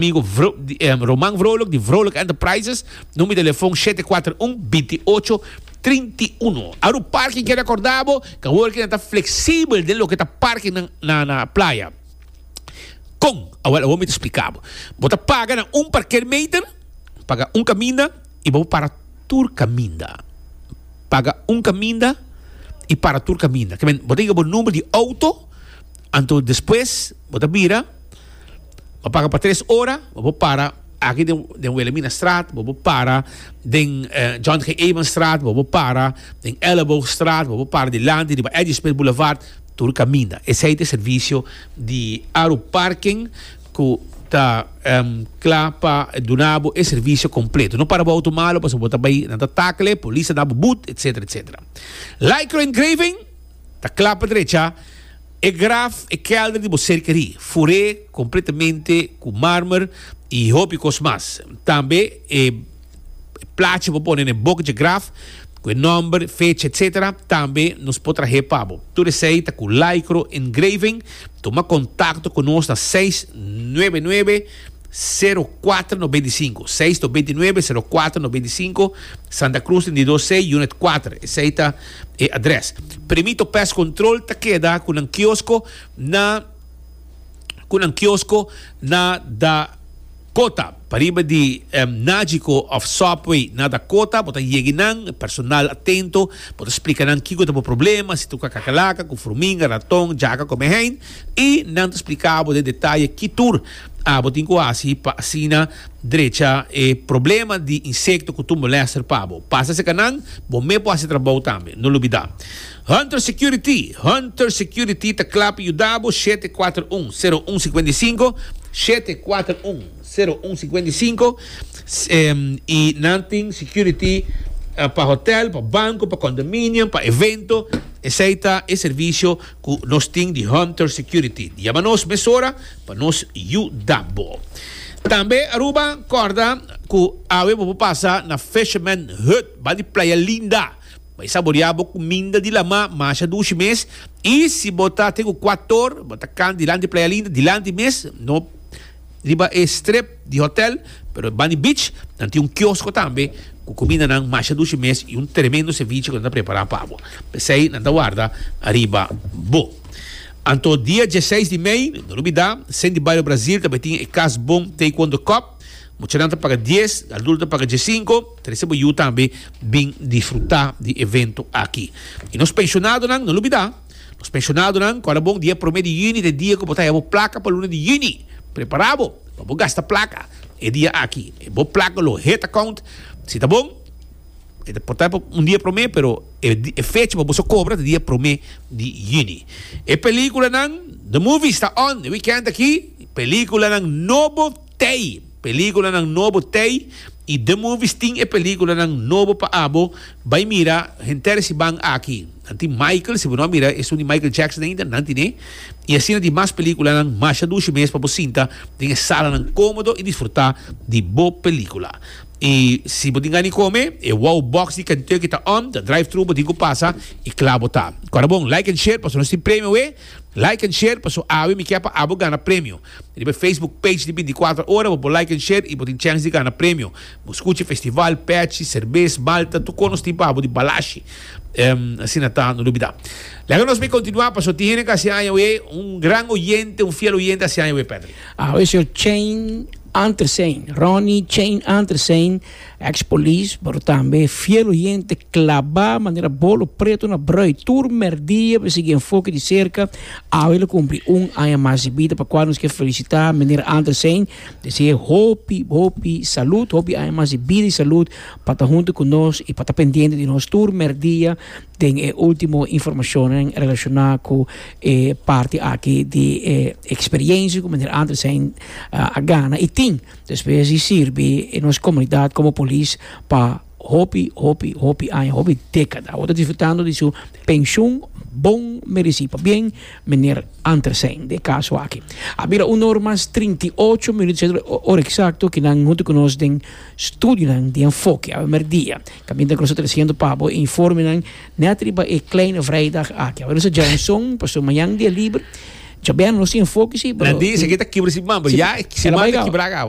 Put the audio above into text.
Amigo Roman Vrolijk di Vrolijk Enterprises, number di telefon shete kuater un, binti ocho, trinti uno. Aru parking ke rekorda bo ku awor ke nan ta fleksibel den loke ta parking na playa. Kon? Awor mi ta splika bo. Bo ta paga na un parkeermeter, paga un kaminda i bo para tur kaminda. Paga un kaminda i para tur kaminda. Bo ta yega bo number di outo, anto despues bo ta bira. Bo paga pa tres ora, bo por para aki den, den Wilhelminastraat, bo por para den eh, John G. Evenstraat, bo por para den Elleboogstraat, bo por para dilanti riba Eddy Smith Boulevard, tur kaminda. Esei ta e servisio di Aru Parking ku ta em kla pa duna bo e servisio kompleto. No para bo outo malo pasobra bo ta bai, nan ta takele, polis ta na bo but, etsetera, etsetera. Lycra Engraving ta kla pa drecha. E graf, e kelder di bo serkerí, fur'é kompletamente ku mármer i hopi kos mas. Tambe e plachi bo pone na e bok dje graf, ku e nòmber, fecha, etc. Tambe nos por trah'é pa bo. Tur esei ta ku Lycro Engraving. Tuma kontakto ku nos na seis nuebe nuebe, sero kuater nobenta i sinku, seis nobenta i nuebe, sero kuater nobenta i sinku, Santa Cruz trenta i dos C, Unit kuater. Esei ta. E adres. Primito Pest Control ta keda ku nan kiosko na ku nan kiosko na Dakota. Pariba di Nagico of Subway na Dakota bo ta yegi nan. Personal atento. Bo ta splika nan kiko ta bo problema, si ta tuka kakalaka, ku furminga, raton, jaka kome hein. I nan ta splika bo den detaye ki tur bo tin ku hasi pa asina. Drecha e problema di insekto ku tur molèster pa bo. Pasa serka nan, bo mes por hasi trabou tambe. No lubidá. Hunter Security, Hunter Security ta kla pa yuda bo shete e kuater un, sero un sikuenta i sinku, shete e kuater un, sero un sikuenta i sinku, i nan tin security pa hotèl, pa banko, pa kondominium, pa evento. Esei ta e servisio ku nos tin di Hunter Security. Yama nos mesora. Pa nos yuda bo. Tambe Aruba corda cu awe bo por pasa na Fisherman Hut bay di Playa Linda. Bay saborea bo cuminda di lama masha dushi mes y si bo ta te cu cuator bo ta can dilanti Playa Linda dilanti mes no riba e strip. di hotel, pero bani beach nan tin un kiosko tambe ku kumindanan masha dushi mes i un tremendo seviche ku nan ta prepará pa bo. P'esei nan ta warda ariba bo. Anto dia diesseis di mei, no por olbidá, Zen di Bario Brazil ta bai tin e Kas Bon Taekwondo Cup. Muchanan ta paga dies, adulto ta paga diessinko. Trese bo yu tambe bin disfrutá di evento aki. I nos penshonadonan, no olbidá. Nos pensionadonan, kòrda bon di e promé di yüni ta e dia ku bo ta haya bo plaka pa luna di yüni. Prepará bo pa bo gasta plaka e dia aki. E bo plaka lo head account, si ta bon e ta por ta pa un dia promé pero e fecha pa bo sa kobra ta dia promé di yüni. E pelíkulanan, The movies ta on e wikènt aki, pelíkulanan nobo. Tei! Peliculanan nobo Tei y The Movies tin e peliculanan nobo pa abo bay mira henter si ban aki. Nan tin Michael, si bo no a mira esun di Michael Jackson ainda, nan tine. Y asina di mas peliculanan masha dushi mes pa bo sinta den e salanan comodo y disfruta di bo pelicula. Y si bo tin gana di come, e Wow Box di Kentucky ta on, ta drive-thru, bo tin cu pasa y cla bo ta. Cu a rabon like and share pasobra nos tin premio awe. Like and share paso awe mi kier pa abo gana premio. Riba e Facebook page di binticuatro ora bo por like and share y bo tin chance di gana premio. Bo scuchi festival, pechi, cerbes, malta, tur con nos tin pa abo di balashi. Ehm asina ta no lubida. Laga nos mi continua paso tin hende cu hasi aña we un gran oyente, un fiel oyente hasi aña we Pedri. Awe señor Chain Antersein, Ronnie Chain Antersein, Ex polis pero tambe fiel oyente klabá manera bolo preto na brùi tur mèrdia pa sigui enfoke di serka awe lo kumpli un aña mas di bida pa kua nos ke felisitá Meneer Andersijn desea hopi hopi salud hopi aña mas di bida i salud pa ta huntu ku nos i pa ta pendiente di nos tur mèrdia den e ultimo informashonnan relashoná ku e parti aki di e eksperyensia ku Meneer Andersijn a gana i tin. Despues di sirbi e nos comunidad como polis pa hopi, hopi, hopi aña, hopi decada. Awor ta disfrutando di su pensioen bon mereci. Pabien meneer Antersein den e caso aki. A bira un or mas trinta i ocho minuut sete de ora exacto ki nan hunto cu nos den studionan di enfoke awe merdia. Caminda cu nos ta traciendo pa bo e informenan net riba e kleine vrijdag aki. Awe nos ta djao un son pasobra mañan dia liber. Djabeer nos tin enfoke si pero. Na di esaki ta kibra si man pero ya e man ta kibraak awa.